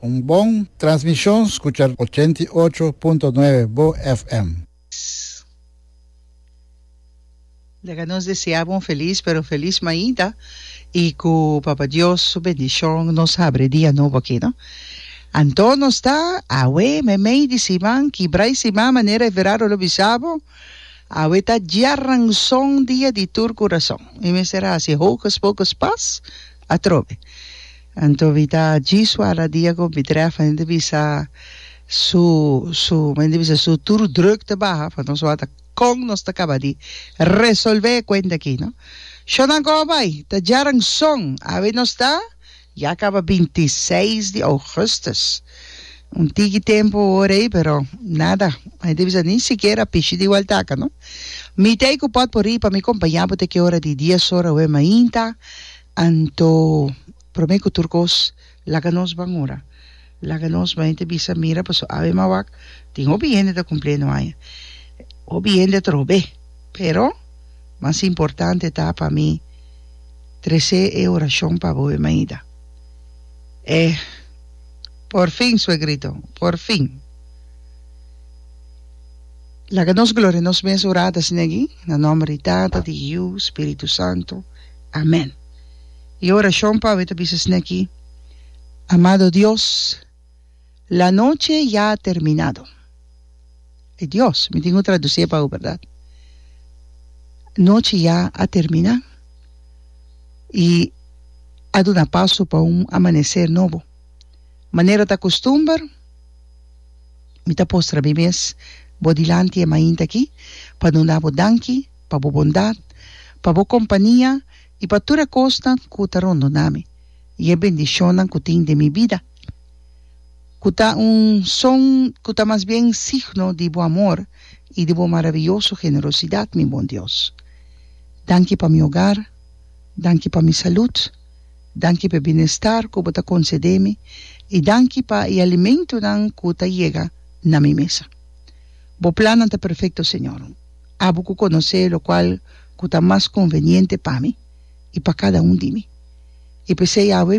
Un bon transmishon skucha ochenta i ocho punto nuebe bo FM. Leka nos desea bo un felis pero felis mainta i ku Papa Dios su bendishon nos habri e dia nobo aki no. Anto nos ta awe meimei di siman kibra i siman manera Everardo lo bisa bo awe ta djaranson dia di tur kurason. Mi mester hasi hokus pokus pas. Atrobe. Anto mi ta djisu ala dia ku mi trèf hende bisa su su mi hende bisa su tur druk ta baha pa nos wak ta kon nos ta kaba di resolve e kuenta aki no. Shònan kòho bai ta djaran son. Awe nos ta ya kaba binti seis di ougùstùs. Un tiki tempu ora ei, pero nada. M'a debe sa ni sikiera pichi di waltaka, no. Mi t'ei ku pòt por ri pa mi kompañá bo te ke ora di dies ora oe mainta, anto promé ku tur kos laga nos ban ora. Laga nos ban. E ta bisa, Mira, paso awe m'a wak, tin hopi hende ta kumplé no aña. Hopi hende trobe, pero mas importante ta pa mi tresé e orashon pa bo oe mainta. E. Por fin, suegrito, por fin. Laga nos gloria nos mes ora ta asina aki, na nomber di Tata, di Yiu, Spiritu Santo. Amen. E oracion pawe ta bisa asina aki, Amado Dios, la noche ya ha terminado. Ai Dios, mi tin ku tradusie pa u, berdad. Nochi ya a termina i a duna paso pa un amanecer nobo. Manera ta costumber, mi ta postra mi mes bo dilanti e mainta aki pa duna bo danki pa bo bondad, pa bo compania i pa tur e cosnan ku ta rondona mi, i e bendicionnan ku tin den mi bida. ku ta un son ku ta mas bien signo di bo amor i di bo marabiyoso generosidat, mi Bon Dios. Danki pa mi ogar, danki pa mi salut, danki pa e bienestar ku bo ta konsede mi i danki pa e alimentunan ku ta yega na mi mesa. Bo plannan ta perfekto, Señor. Abo ku konosé lokual ku ta mas konveniente pa mi i pa kada un di mi. I p'esei, Yahweh,